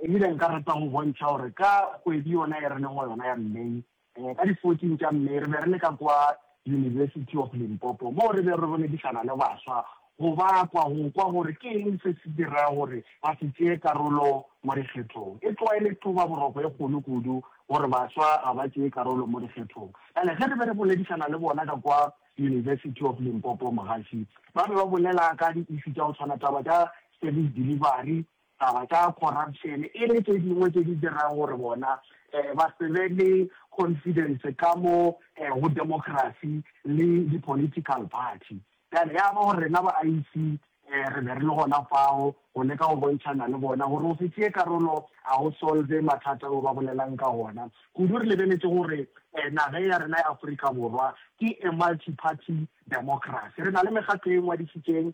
E bile nka rata go bontšha gore ka kgwedi yona e re leng go yona ya May, ka di fourteen tša May, re be re le ka kwa University of Limpopo moo re bego re boledišana le baswa go ba kwa go kwa gore ke eng se se dirago gore ba se tšee karolo mo dikgethong. E tloga e le thobaboroko e kgolo kudu gore baswa ga ba tšee karolo mo dikgethong. Bjale ge re be re boledišana le bona ka kwa University of Limpopo, mogaši, ba be ba bolela ka di-issue tša go tshwana, taba tša service delivery, taba tša corruption e le tše dingwe tše di dirago gore bona ba se be le confidence ka mo go democracy le di political party. Bjale ya ba gore rena ba IEC re be re le gona fao go leka go bontšhana le bona gore go se tšee karolo ga go solve mathata ao ba bolelang ka wona, kudu re lebeletše gore nageng ya rena ya Afrika Borwa ke a multi-party democracy, re na le mekgatlo e ngwadišitšeng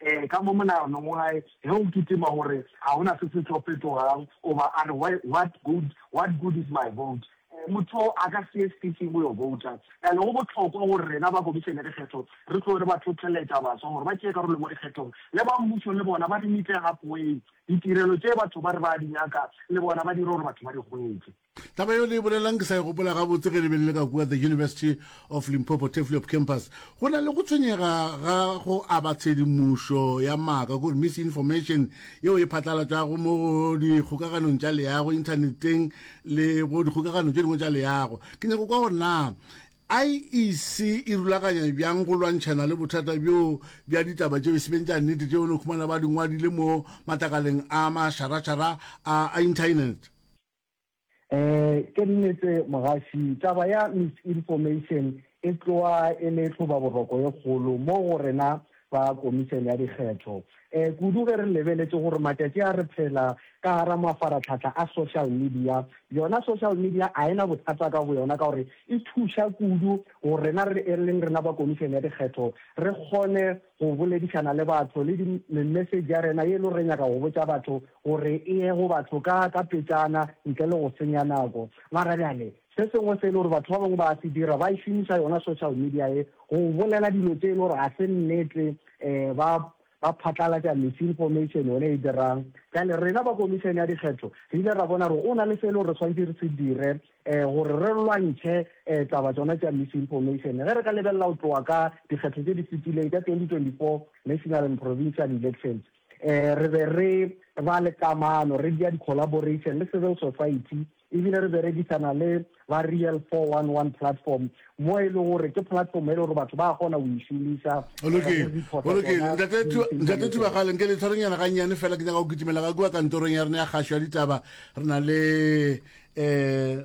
Ee, ka mo monaganong wa gagwe, ge o kitima gore ga go na se se tlo fetogang goba a re, Why, what good, what good is my vote? Ee, motho yo a ka se ye station go yo bouta. Bjale go bohlokwa gore rena ba Komišene ya Dikgetho re tloge re ba hlohleletša baswa gore ba tšee karolo mo dikgethong. Le ba mmušo le bona ba re nitlegapoeng. Ditirelo tše batho ba re ba a di nyaka le bona ba dire gore batho ba di hwetše. Taba yeo le e bolelang ke sa e gopola gabotse ge le be le le ka kua The University of Limpopo Tefliop Campus. Go na le go tshwenyega ga go aba tshedimošo ya maaka, kore misinformation, yeo e phatlalatšwago mo go dikgokaganong tša leago, inthaneteng le go dikgokagano tše dingwe tša leago. Ke nyako kwa gore na IEC e rulaganya bjang go lwantšhana le bothata bjo bja ditaba tšeo e se beng tša nnete tšeo le khumana ba di ngwadile mo matlakaleng a mašarašara a, a inthaenete. Ee, ke nnete mogaši. Taba ya misinformation e tloa e le tlhobaboroko e kgolo mo go rena ba Komišene ya Dikgetho, e, kudu ge re lebeletše gore matšatši a re phela ka gara mafaratlhahla a social media. Yona social media a e na bothata ka boyona ka gore e thuša kudu go rena re e leng rena ba Komišene ya Dikgetho re kgone go boledišana le batho le di, me-message ya rena ye e le gore re nyaka go botša batho gore e ye go batho ka, ka petšana, ntle le go senya nako. Mara bjale, se sengwe se e le gore batho ba bangwe ba a se dira, ba e šomiša yona social media ye, go bolela dilo tše e le gore ga se nnete, um ba, ba phatlalatša misinformation yona e dirang. Bjale rena ba Komišene ya Dikgetho re ile ra bona gore go na le se e le gore re swanetše re se dire, um gore re lwantšhe um taba tšona tša misinformation. Ge re ka lebelela go tloga ka dikgetho tše di fetileng tša 2024 National and Provincial Elections, Re be re ba le kamano, re dia di-collaboration le civil society e bile re berekisana le ba Real 411 Platform mo e le gore ke platform e le gore batho ba kgona go e šomiša go reporta tsona di-incident. Ntate Thubagale, nke le tshwarenyana ga nnyane fela ke nyaka go kitimela ga kua kantorong ya rena ya kgašo ya ditaba re na le um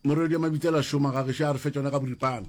morwedi wa mabitsela šoma ga gešo a re fe tsona ka boripana.